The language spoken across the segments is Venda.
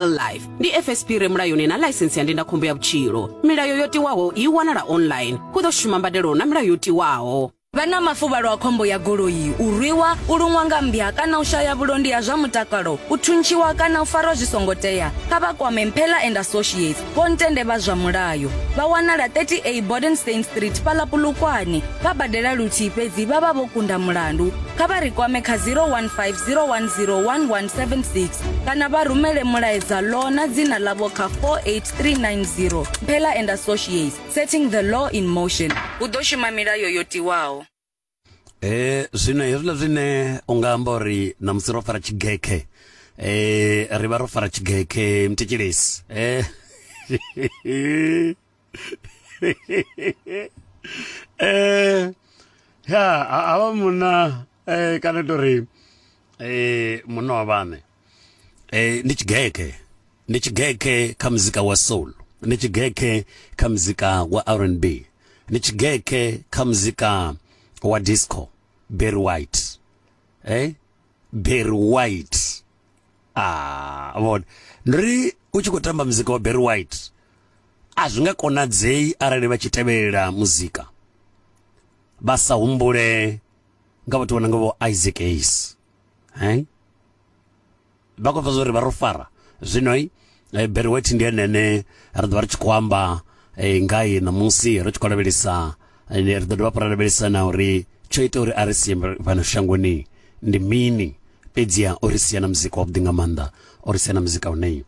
life ndi fsp re mulayoni na ḽaisensi ya ndindakhombo ya vhutshilo milayo yo tiwaho i wanala online hu ḓo shuma mbadelo na milayo yo tiwaho vha na mafuvhalo a khombo ya goloi u rwiwa u luṅwa nga mmbya kana u shaya vhulondi ha zwa mutakalo u thuntshiwa kana u farwa zwi songo tea kha vha kwame mphela and associates vho ntende vha zwa mulayo vha wanala 30a bodenstein street fhala pulukwane vha badela luthihi fhedzi vha vha vho kunda mulandu kha vha ri kwame kha 015 010 1176 kana vha rumele mulaedza law na dzina ḽavho kha 48390 mphela and associates setting the law in motion hu ḓo shuma milayo yo tiwaho e zwino hezwiḽa zwine u nga amba uri na musi ro fara tshigekhe e ri vha ro fara tshigekhe mthetshelesi e eh ya ha vha munna eh kana tori eh munna wa vhane eh ndi tshigeke ndi tshigeke kha muzika wa soul ndi tshigeke kha muzika wa R&B ndi tshigeke kha muzika wa disco Barry White eh Barry White ah vhona ndi ri u tshi khou tamba muzika wa Barry White a zwi nga konadzei arali vha tshi tevhelela muzika vha sa humbule nga vhathu vhona nga vho Isaac Hayes eh vha khou pfha zwa uri vha ro fara zwino e, beruweti ndi ene ane ri ḓo vha ri tshi khou amba e, ngaye ṋamusi ri tshi khou lavhelesa e, ri ḓo dovha fho ra lavhelesa na uri tsho ita uri a ri sie fhano shangoni ndi mini fhedziha o ri sia na muzika wavhuḓi nga maanḓa o ri sia na muzika une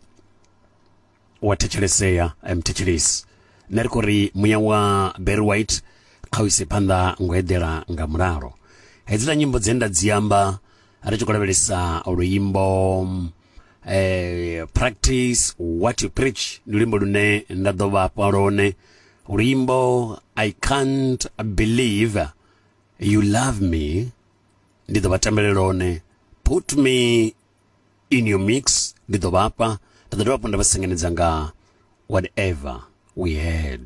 wa thetshelesea mthetshelesi nṋe ri khou ri muya wa berry white kha u ise phanḓa ngo eḓela nga mulalo hedziḽa nyimbo dze nda dzi amba ri tshi khou lavhelesa luimbo eh, practice what you preach ndi luimbo lune nda ḓo vha fha lone luimbo i can't believe you love me ndi ḓo vha tambele lone put me in your mix ndi ḓo vha fha nda ḓo dovha hafhu nda vha sengenedza nga whatever we had